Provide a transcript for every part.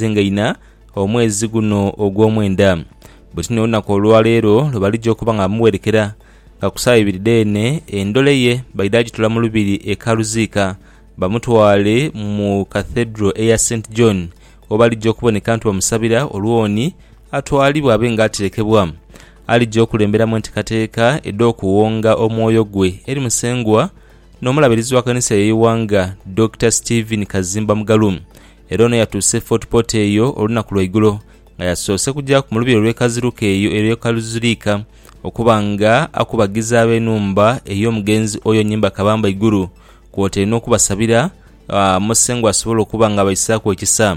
Zingaina omwezi guno ogw'omwenda. Buti n'olunaku olwaleero lwe balija okuba nga bamuwerekera, nga ku saawa ibiri dheene endole ye baidha gitula mu lubiri e Karuziika bamutwale mu Cathedral eya Saint John we balija okuboneka nti bamusabira olwoni atwalibwe abe nga aterekebwa alija okulemberamu entekateeka edh'okuwonga omwoyo gwe eri Musengwa n'Omulabirizi wa Kkanisa y'eighanga Dokita Stephen Kazimba Mugalu Era ono yatuuse e Fort Portal eyo olunaku lwa igulo nga yasoose kujaaku mu lubiri olw'ekaziruka eyo elw'e Kaluzuliika okuba nga akubagiza ab'enhumba ey'omugenzi oyo nyimba kabamba igulu kwotaire n'okubasabira Musengwa asobole okuba nga abaisaaku ekisa.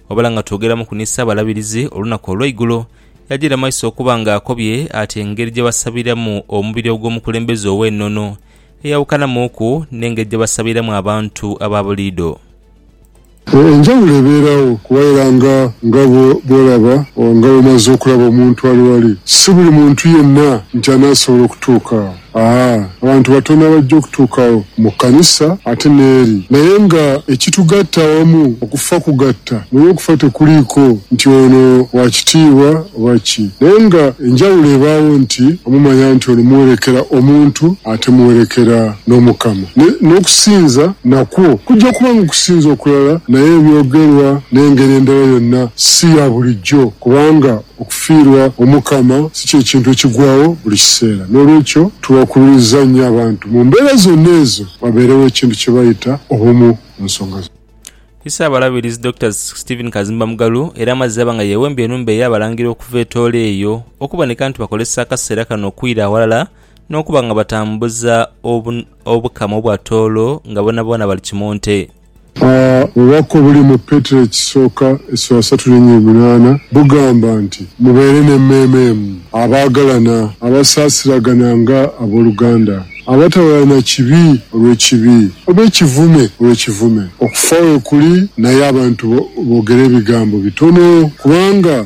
Wabula nga twogeramuku ni Ssaabalabirizi olunaku olw'eigulo yajiira maiso okuba nga akobye ati engeri gye basabiramu omubiri ogw'omukulembeze ow'enono eyawukanamuuku n'engeri gye basabiramu abantu aba buliidho. Enjawulo ebeeragho waira nga nga bw'olaba oba nga bw'omaze okulaba omuntu ali wali. Si buli muntu yenna nti anaasobola okutuuka agho. Aa, abantu batono abaja okutuuka agho mu kkanisa ate n'eri. Naye nga ekitugatta awamu okufa kugatta, naye okufa tekuliiko nti ono wa kitiibwa oba ki. Naye nga enjawulo ebaagho nti omumanya nti ono muwerekera omuntu ate muwerekera n'Omukama. N'okusinza nakwo kujja kuba ng'okusinza okulala, naye ebyogerwa n'engeri endala yonna si ya bulijjo, kubanga okufiirwa Omukama si kye kintu ekigwagho buli kiseera. N'olwekyo, tuwakululiza nnyo abantu mu mbeera zonna ezo wabeerewo ekintu kye bayita obumu mu nsonga zonna. Ssaabalabirizi Dokita Stephen Kazimba Mugalu era amazze aba nga yeewembye enhumba ey'Abalangira okuva e Tooro eyo okuboneka nti bakozesa akaseera kano okwira awalala n'okuba nga batambuza obu, obukama obwa toolo nga boonaboona bali kimu nte. A Obubaka obuli mu Petero Ekisooka esula satu linya emunaana bugamba nti, Mubeere n'emmeeme emu, abaagalana, abasaasiragana nga ab'oluganda, abatawalana kibi olw'ekibi, oba ekivume olw'ekivume. Okufa weekuli, naye abantu boogera ebigambo bitono, kubanga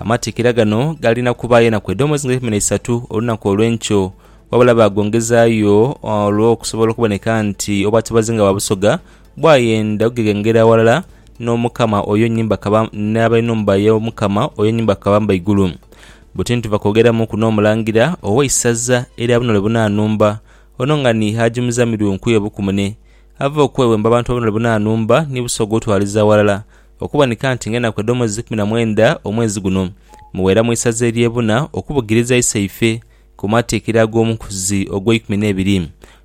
Amatikkira gano galina kuba yena ku edhoomozi nga eikumi n'eisatu olunaku olw'enkyo, wabula baagongezayo olw'okusobola okuboneka nti obwatobazi nga bwa Busoga bwayenda okugeghengera aghalala n'Omukama oyo nyini bakaba n'ab'enhumba y'Omukama oyo nyini bakaba Mbaigulu. Buti nituva kwogeramuuku n'Omulangira ow'eisaza erya Bunole Bunanumba, ono nga ni Haji Muzamiru Nkuye Bukumune, ava okwewemba abantu ba Bunole Bunanumba ni Busoga otwaliza aghalala Okuboneka nti ng'enaku edh'omwezi ikumi na mwenda omwezi guno muwera mu isaza ery'e Buna okubugiriza iseife ku matiikira ag'omukuzi ogw'eikumi n'ebiri,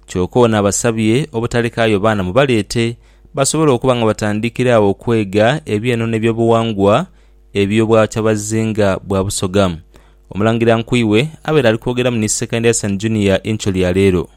kyoka ono abasabye obutalekaayo baana mubaleete basobole okuba nga batandikira agho okwega eby'eno n'ebyobuwangwa eby'obwakyabazinga bwa Busoga. Omulangira Nkuiwe abaire ali kwogeramu ni Second Year San Junior Incho lya leero.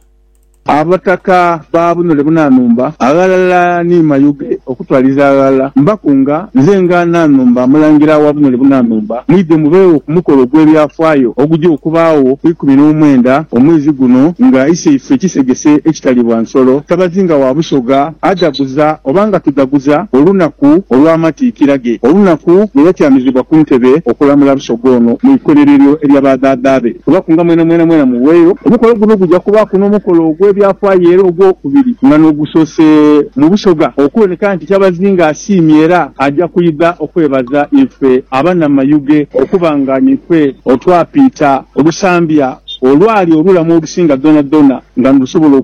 Abataka ba bunule bunanumba aghalala ni mayuge okutwaliza aghalala. Mbakunga, nze nga Nanumba Omulangira wa bunule bunanumba, mwidhe mubeegho ku mukolo ogw'ebyafaayo ogugya okubaagho ku ikumi n'omwenda omwezi guno nga Iseife Kisegese Ekitalibwa Nsolo, Ssabazinga wa Busoga adhaguza oba nga tudhaguza olunaku olw'amatiikira ge, olunaku lwe yatyamizibwa ku ntebe okulamula Busoga ono mu ikolero eryo erya ba dhaadha be. Kubaku nga mwenamwena mwena muweeyo omukolo guno. Guja kubaaku n'omukolo ogw'ebyafaayo era ogwokubiri nga n'ogusoose mu Busoga okuboneka nti Kyabazinga asiimye era aja kwidha okwebaza ife abanamayuge okuba nga nife otwapiita olusambya olwali olulamu olusinga dhonadhona nga nilusobola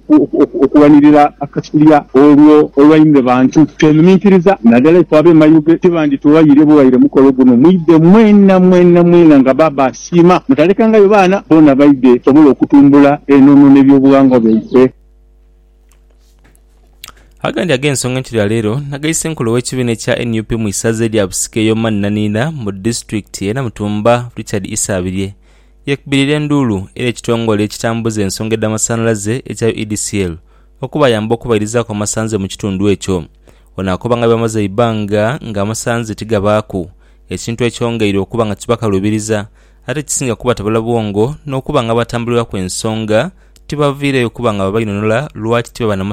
okuwanirira akasulya olwo olwaine bantu. Twenuminkiriza nadala ife abemayuge tibandituwaire buwaire mukolo guno mwidhe mwena mwena mwena nga baba Siima, mutalekangayo baana boona baidhe tusobole okutumbula enono n'ebyobughangwa byaife. Agandi ag'ensonga enkyo ya leero na ga Issenkulu ow'ekibiina ekya nup mu isaza elya Busika ey'omanhinanhinha mu disitulikiti e Namutumba, Richard Isabirye yeekubirira enduulu eri ekitongole ekitambuza ensonga edh'amasanhalaze ekya UEDCL okubayamba okubairizaku amasanhze mu kitundu ekyo. Ono akoba nga bamaze eibanga nga amasanhze tigabaaku. ekintu ekyongeire okuba nga kibakalubiriza ate kisinga kubatabula bwongo n'okuba nga abatambulilaku ensonga tibaviireyo kuba nga babainhonhola lwaki tibaba na